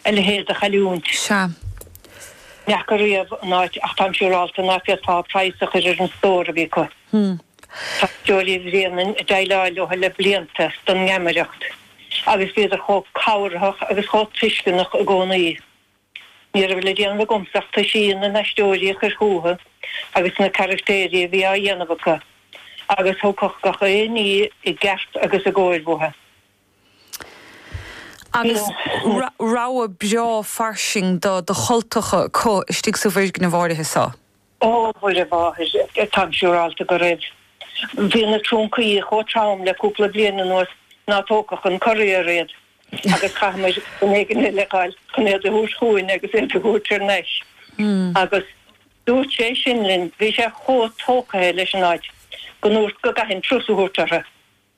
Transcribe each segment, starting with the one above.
a leithéid de chailliúint. Sea. Ní fhaca riamh an áit, ach táim siúrálta ná féadfá praghas a chur ar an stór a bhí acu. Tá Aisteoirí Bhréanainn ag déileáil leo le blianta don ngeamaireacht, agus bhíodar chomh cabharthach agus chomh tuisceanach i gcónaí. Ní raibh le déanamh agamsa ach toisí na n-aisteoirí a chur chúthu agus na carachtaeirí a bhí á dhéanamh acu, agus thagadh gach aon ní i gceart agus i gcóir uathu. agus rogha breá fairsing de chultacha acu istigh sa bhfoirgneamh áirithe seo. Ó, Mhuire Mháthair, táim siúráilte go raibh. Bhí na trúncaí chomh trom le cúpla bliain anuas ná tógfadh an courier iad, agus caithfimid duine éigin a fháil chun iad a thabhairt chugainn agus iad a thabhairt ar n-ais. Agus dúirt sé san linn, bhí sé chomh tógtha leis an áit, go ndúirt go gcaithfinn turas a thabhairt orthu.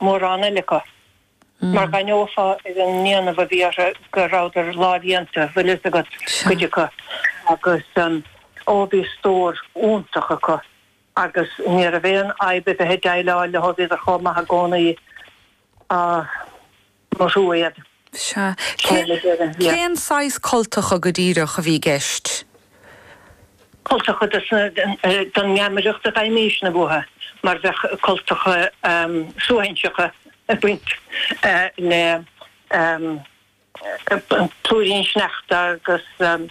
mórán eile acu, mar dh'aithneofá ar an ndéanamh a bhí orthu go rabhadar lámhdhéanta, bhfuil fhios agat, cuid acu, agus, ó, bhí stór iontach acu agus ní raibh aon fhadhb a bheith ag déileáil leo, bhíodar chomh maith i gcónaí. mo thrua iad. Sea. Cé, cén saghas cultacha go díreach a bhí i gceist? Cultacha de sna, den ngeamaireacht a gheibhimís-ne uathu, mar bheadh cultacha suaithinseacha ag baint le plúirín sneachta agus an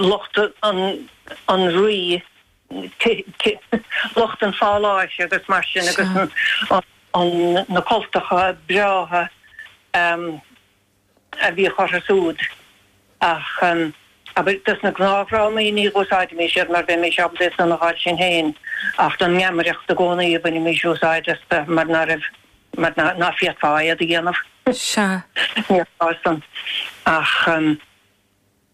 lucht, an rí. lucht an pháláis agus mar sin agus na cultacha breátha a bhíodh orthu súd. Ach abair, dos na gnáthdhrámaí, ní úsáidimis iad mar bheimis ábalta iad san a fháil sinn féin, ach don ngeamaireacht i gcónaí a bhainimís úsáid astu mar ná raibh, mar ná féadfá iad a dhéanamh. Sea. Níor ghá san. Ach.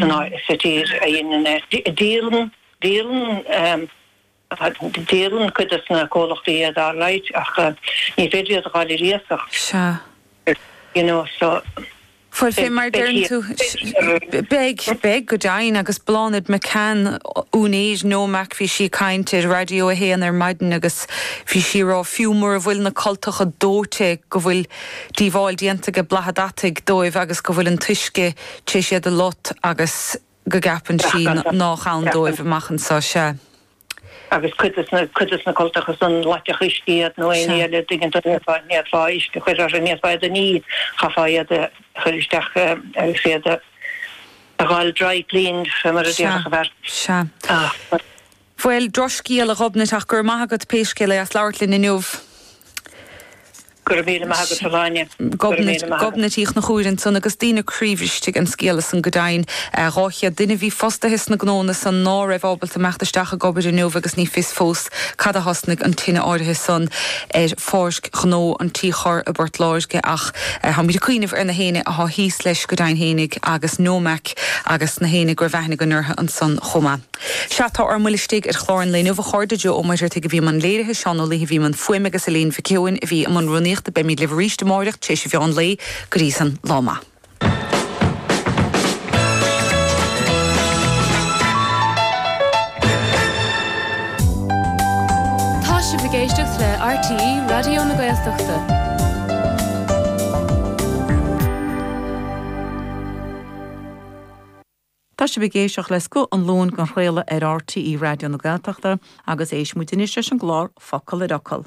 aon áit sa tír a dheineann é. Díolann, Díolann, Díolann cuid de na comhlachtaí iad, alright, ach ní féidir iad a dh'fháil ar iasacht, Sea. you know, so. Bhuel fé mar a Beidh deireann tú. thíos. Beidh, Beidh, go deimhin, agus Bláthnaid McCann, úinéir Nomac, bhí sí ag caint ar Raidió a hAon ar maidin agus bhí sí ag rá fiú mura bhfuil na cultacha dóite go bhfuil díobháil déanta aige boladh an deataigh dóibh agus go bhfuil an t-uisce tar éis iad a lot agus go gceapann sí nách ann dóibh Ceapann. amach anso. Sea. Agus cuid de sna, cuid de sna cultacha san, loitfeadh uisce iad nó éinní Sea. eile an dtuigeann tú, n'fhéadfá, n'fhéadfá uisce a chuir orthu, n'fhéadfá iad a ní, chaithfeá iad a chuir isteach agus iad a, a dh'fháil, dry cleaned, fé mar a Sea. déarfadh an fear. Sea. Ach. Bhuel, drochscéal, a Ghobnait, ach go raibh maith agat, pé scéal é, as labhairt linn inniu. Go raibh míle maith agat, a Ghráinne. Gobnait, Gobnait Uí Chnochúir ansan, agus daoine croíbhriste ag an scéala san, go deimhin. Dhá chéad duine a bhí fostaithe sna gnóanna san ná raibh ábalta imeacht isteach ag obair inniu agus ní fios fós cad a thosnaigh an tine áirithe san ar pháirc ghnó an Tí Choirr i bPort Láirge ach táimid ag cuimhneamh ar gach éinne atá thíos leis go deimhin fhéinig agus Nomac agus gach éinne go raibh aithne againn orthu ansan chomh maith. Sea, tá ár mbuille-ne istigh ar chlár an lae inniu, a chairde. Joe Ó Muircheartaigh a bhí i mbun léirithe, Seán Ó Laoithe a bhí i mbun fuaime agus Elaine Mhic Eoin a bhí i mbun rúnaíochta. Beimid libh arís amárach tar éis a mheáin lae. Go dtí san, lá maith. Tá sibh ag éisteacht le RTÉ Raidió na Gaeltachta. Tá sibh ag éisteacht le Scoth an Luain á chraoladh ar RTÉ Raidió na Gaeltachta agus éistfimid anois leis an gclár Focal ar Fhocal.